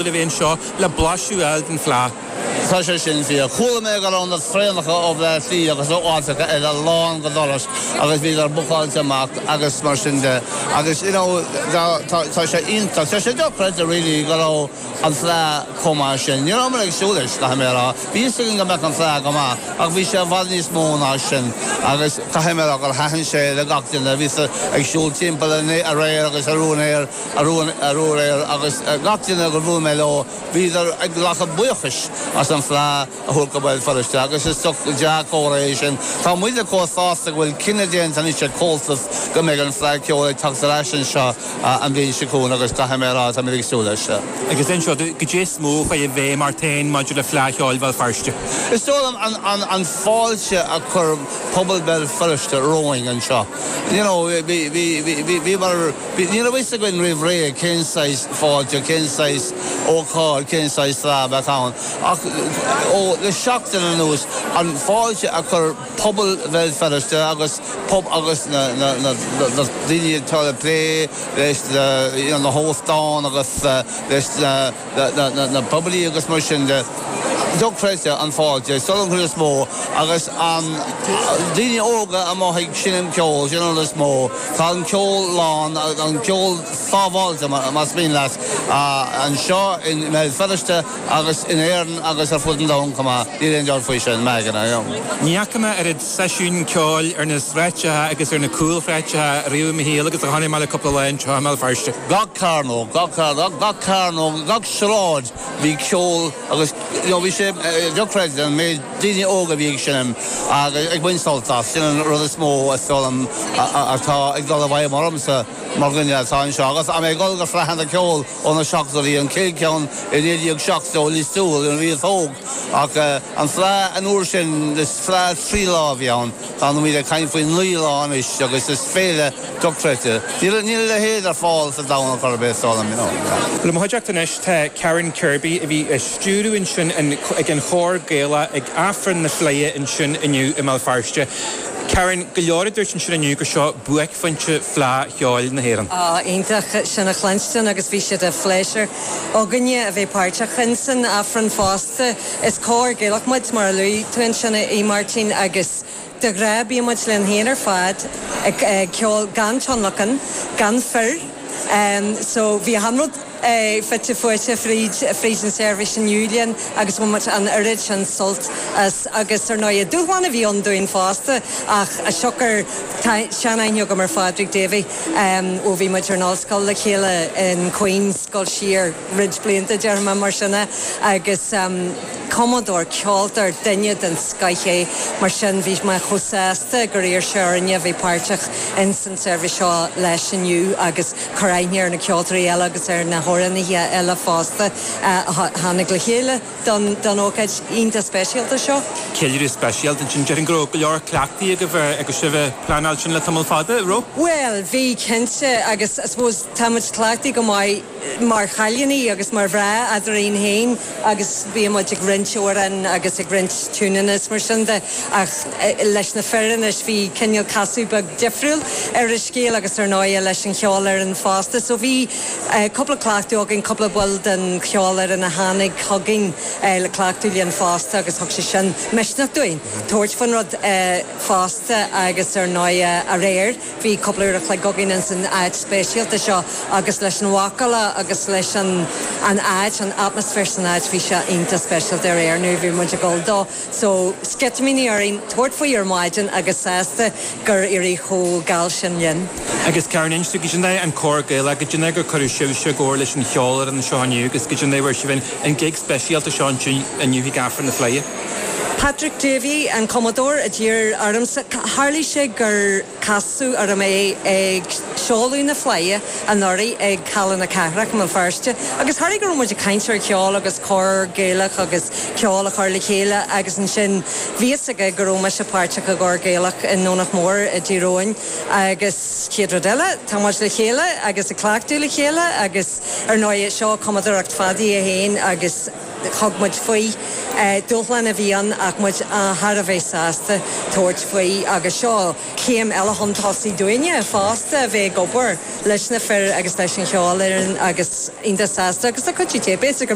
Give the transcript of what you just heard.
Gaillimhe a bheidh anseo le blaiseadh a fháil den Fhleadh. Tá sé sin fíor. Chuala mé go raibh na traenacha ó Bhleá Cliath agus ó áiteacha eile lán go doras agus bhíodar bookáilte amach agus mar sin de agus you know tá sé iontach, tá sé dochreidte really go raibh an Fleadh chomh maith sin. Ní rabhamar ag súil leis, caithfidh mé a rá. Bhí fhios againn go mbeadh an Fleadh go maith ach bhí sé i bhfad níos mó ná sin agus caithfidh mé a rá gur thaitin sé le gach duine a bhí ag siúl timpeall aréir agus arú aréir. aréir agus gach duine gur bhuail mé leo bhíodar ag glacadh buíochais as an Fleadh a thabhairt go Béal Feirste agus is dea-chomhartha é sin. Tá muide chomh sásta go bhfuil cinneadh déanta anois ag Comhaltas go mbeidh an Fleadh Ceoil ag teacht ar ais anseo an bhliain seo chugainn agus caithfidh mé a rá, tá muid ag súil leis. Agus anseo caidé is mó a chuaigh i bhfeidhm ort féin maidir le Fleadh Cheoil Bhéal Feirste? Is dóigh liom an fáilte a chuir pobal Bhéal Feirste romhainn anseo. you know, bhí, bhí, bhí, bhí, bhíomar, bhí, ní raibh fhios againn roimh ré cén saghas fáilte, cén saghas ócáid, cén saghas tráth a bheadh ann ach ó, le seachtain anuas, an fáilte a chuir pobal Bhéal Feirste agus pob, agus na, na, na, na daoine atá ag plé leis na, you know, na hóstáin agus leis na. na poiblí agus mar sin de. dochreidte an fáilte, is dóigh liom is mó agus na daoine óga i mbliana ag seinm an ceol sin an is mó tá an ceol slán an ceol sábháilte más mian leat anseo i mBéal Feirste agus in Éirinn agus ar fud an domhain chomh maith níl aon dabht faoi sin, Megan, I am. Ní fhaca mé oiread seisiún ceoil ar na sráideanna agus ar na cúlshráideanna riamh i mo shaol agus a chonaic mé le cúpla lá anseo i mBéal Feirste. Gach cearnóg, gach cearnóg, gach sráid bhí ceol agus bhí sé dochreidte an méid daoine óga a bhí ag seinm agus ag baint sult as. Sin an rud is mó atá ag dul i bhfeidhm ormsa mar dhuine atá anseo agus mé ag dul go Fleadh Cheoil. Ó na 70í bhí an chéad ceann i 1970 Lios Tuathail nuair a bhíos óg ach an Fleadh an uair sin is fleadh trí lá a bhí ann, táimid ag caint faoi naoi lá anois agus is féile dochreidte. Níl a leithéid ar fáil sa domhan ar chor ar bith, is dóigh liom. I mo chuideachta anois tá Karen Kirby a bhí ag stiúradh ansin ag an chór Gaelach ag Aifreann na Fleidhe ansin inniu i mBéal Feirste. Karen, Go leor a dúirt ansin inniu gur seo buaicphointe Fleadh Cheoil na hÉireann. Oh, iontach sin a chluinstin agus bhí sé de phléisiúr againne a bheith páirteach in san Aifreann fosta. Is cór Gaelach muid mar a luaigh tú ansin a Mháirtín agus de ghnáth bíonn muid linn féin ar fad ag ceol gan tionlacan, gan fir, so bhí achan rud. fite fuaite fríd an seirbhís inniu linn agus bhain muid an oiread sin sult as agus ar ndóigh dúshlán a bhí ann dúinn fosta ach as siocair seanaithne agam ar Phádraig Davey ó bhí muid ar an ollscoil le chéile in Queen's ag dul siar roinnt blianta déarfaidh mé mar sin de agus cumadóir ceoltóir duine den scoith é mar sin bhí mé chomh sásta gur iarr sé orainne a bheith páirteach insan tseirbhís seo leis inniu agus cur aithne ar na ceoltóirí eile agus ar na hamhránaithe eile fosta a tháinig le chéile don ócáid iontach speisialta seo. Ceiliúradh speisialta ansin. Déarfainn go raibh go leor cleachtaidh agaibh agus sibh a' pleanáil sin le tamall fada, an raibh? Bhuel, bhí cinnte agus I suppose tá muid cleachtaithe go maith mar chailíní agus mar mhná eadrainn fhéin. agus bíonn muid ag roinnt amhrán agus ag roinnt tiúineanna is mar sin de ach leis na fir anois bhí cineál casadh beag difriúil ar an scéal agus ar ndóighe leis an cheolfhoireann fosta so bhí cúpla cleachtadh againn, cúpla ball den cheolfhoireann a tháinig chugainn le cleachtadh linn fosta agus thug sé sin misneach dúinn tabhairt faoin rud fosta agus ar ndóighe aréir. Bhí cúpla uair a chloig againn ins an áit speisialta seo agus leis an mhacalla agus leis an an áit, an atmaisféar san áit bhí sé iontach speisialta aréir nuair a bhí muid ag dul dó. So, sceitimíní orainn tabhairt faoi ar maidin agus sásta gur éirigh chomh geal sin linn. Agus cá bhfuair sibhse, cad é mar, an cór Gaelach, cad é mar cuireadh sibhse i gcomhar leis an cheolfhoireann anseo inniu agus cad é mar fuair sibh an gig speisialta seo anseo inniu ag Aifreann na Fleidhe. Patrick Davey, an cumadóir, a d'iarr ormsa, tharlaigh sé gur casadh orm é ag seoladh na Fleidhe anuraidh ag Halla na Cathrach i mBéal Feirste agus tharlaigh go raibh muid ag caint ar cheol agus cór Gaelach agus ceol a chur le chéile agus ansin bhí fhios aige go raibh mise páirteach i gcór Gaelach i nDomhnach Mór i dTír Eoghain agus chéad rud eile tá muid le chéile agus ag cleachtadh le chéile agus ar ndóighe seo cumadóireacht Phaddy é féin agus Thug muid faoi. Dúshlán a bhí ann ach muid thar a bheith sásta tabhairt faoi agus seo céim eile chun tosaigh dúinne fosta a bheith ag obair leis na fir agus leis an cheolfhoireann agus iontach sásta agus lá go dtí é, Béal